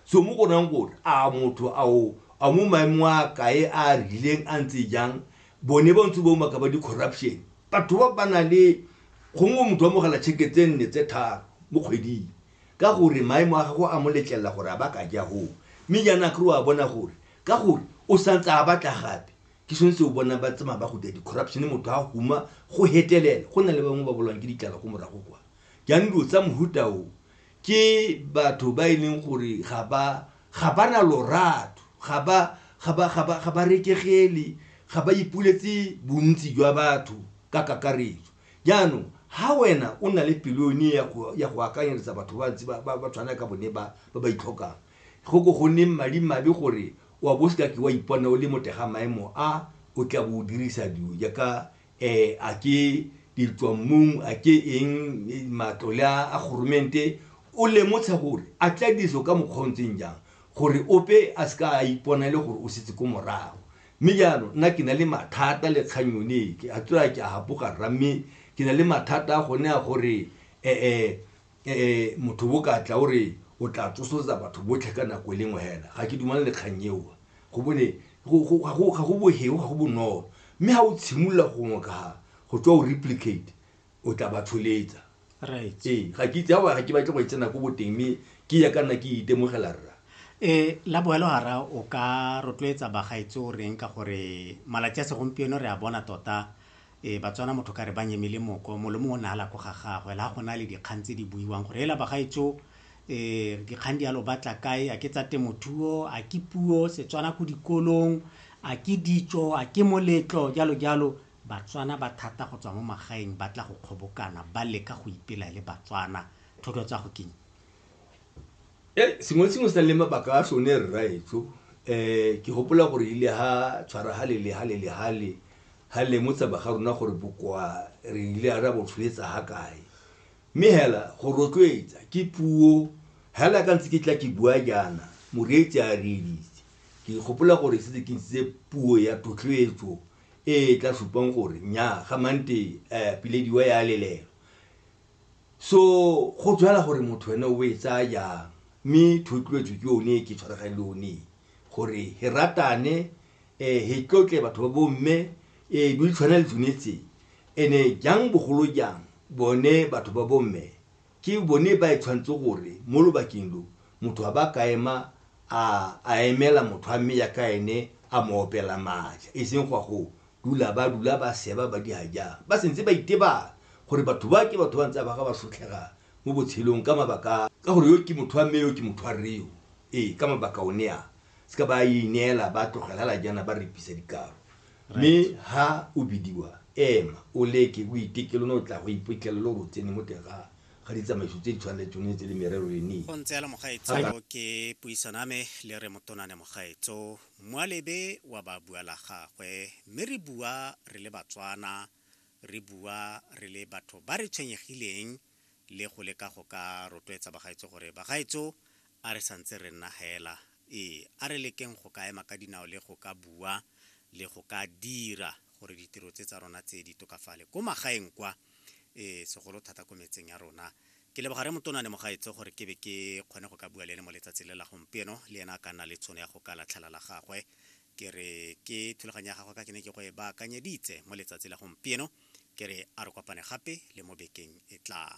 so mo go rayang gore a motho ao a mo maemo a kae a a rileng a ntse jang bone ba ntse ba umaka ba di-corruption batho ba ba na le gongwe motho wa mogela tšheke tse nne tse tharo mo kgweding ka gore maemo a gago a mo letlelela gore a ba ka ja goo mme jaana kry a bona gore ka gore o santse a batla gape ke sone se o bona ba tsamaya ba go dira di-corruption motho a huma go hetelela go na le bangwe ba bolwang ke ditlala go morago kwa jaanong dilo tsa mohuta o ke batho ba e leng gore ga ba ga ba na lorato ga ba ga ba ga ba ga ba rekegele ga ba ipuletse bontsi jwa batho ka kakaretso jaanong ha wena o na le pelo yone ya go ya go akanyeletsa batho ba ntse ba ba tshwana ka bone ba ba ba itlhokang go ko go neng madi mabe gore wa bo seka ke wa ipona o le motega maemo a o tla bo o dirisa dilo jaaka um a ke ditswammung a ke eng matlole a goromente o lemotsha gore a tla diriso ka mokgwa o ntseng jang gore ope a se ka a ipona e le gore o setse ko morago mme jaanong nna ke na le mathata le kgang yone ke a tswa ke a gapoga rra mme ke na le mathata a gone a gore ee eh motho bo ka tla o re o tla tsosoletsa batho botlhe ka nako e lengwe hela ga ke dumane le kgang eo go bone ga go boheo ga go bonolo mme ga o tshimolola gongwe ka ga go tswa o replicate o tla ba tsholetsa right ee ga ke itse ga ke batle go e tsena ko boteng mme ke ya ka nna ke itemogela rra e la boelo hara o ka rotloetsa bagaetsi o reng ka gore malatsi a segompieno re a bona tota Ee, Batswana motho ka re ba nyemile moko, molomo o ne a la ko ga gagwe, la go na le dikgang tse di buiwang gore ela bagaetso eh, dikgang di alo batla kae, a ke tsa temothuo, a ke puo, Setswana ko dikolong, a ke ditso, a ke moletlo, jalo jalo. Batswana ba thata go tswa mo magaeng ba tla go kgobokana, ba leka go ipela e le Batswana. Thotloetsago keng? sengwe le sengwe se na le mabaka a sone rraetsho um ke gopola gore ile ha tshwara halele halele hale ha lemotsa ba ga rona gore bokoa re ile a ra bo tsholetsa ha kae mme hela go rotloetsa ke puo hela ka ntse ke tla ke bua jaana moreetsi a reeditse ke gopola gore setse ke ntshitse puo ya thotloetso e e tla supang gore nya ga mante um eh, pilediwa ya lelelo So go jwala gore motho wena o e tsaya jang mme thotloetso ke yone ke tshwaragang le one gore he ratane um he tlotle batho ba bomme um di tshwana le tsone tse ene jang bogolo jang bone batho ba bomme ke bone ba e tshwanetse gore mo lobakeng lo motho a ba ka ema a emela motho a mme ya ka ene a mo opela maatla e seng go a go dula ba dula ba seba ba di hajang ba sentse ba itebala gore batho ba ke batho ba ntse ba ga ba sotlhega mo botshelong ka mabaka ka gore yo ke motho wa mme yo ke motho wa rreo ee ka mabaka one a se ka ba ineela ba tlogelela jana ba repisa dikaro mme ha o bidiwa ema o leke o itekelo no tla go iphitlhela lo go tsene mo teng ga ga ditsamaiso tse di tshwanetseng tse le merero le ne go ntse le mogaetso ke puisano ame le re motonane mogaetso Moalebe wa ba bua la gagwe, mme re bua re le Batswana, re bua re le batho ba re tshwenyegileng le go leka go ka rotloetsa bagaetsho gore bagaetsho a re santse re nna hela, ee, a re lekeng go ka ema ka dinao le go ka bua le go ka dira gore ditiro tse tsa rona tse di tokafale ko magaeng kwa, ee, segolo thata ko metseng ya rona, Ke leboga Rre Motona le Mogaetsho gore ke be ke kgone go ka bua le ene mo letsatsi le la gompieno, le ena a ka nna le tshono ya go ka latlhela la gagwe. Ke re ke thulaganyo ya gagwe ka ke ne ke go e baakanyeditse mo letsatsi la gompieno, ke re a re kopane gape le mo bekeng e tlang.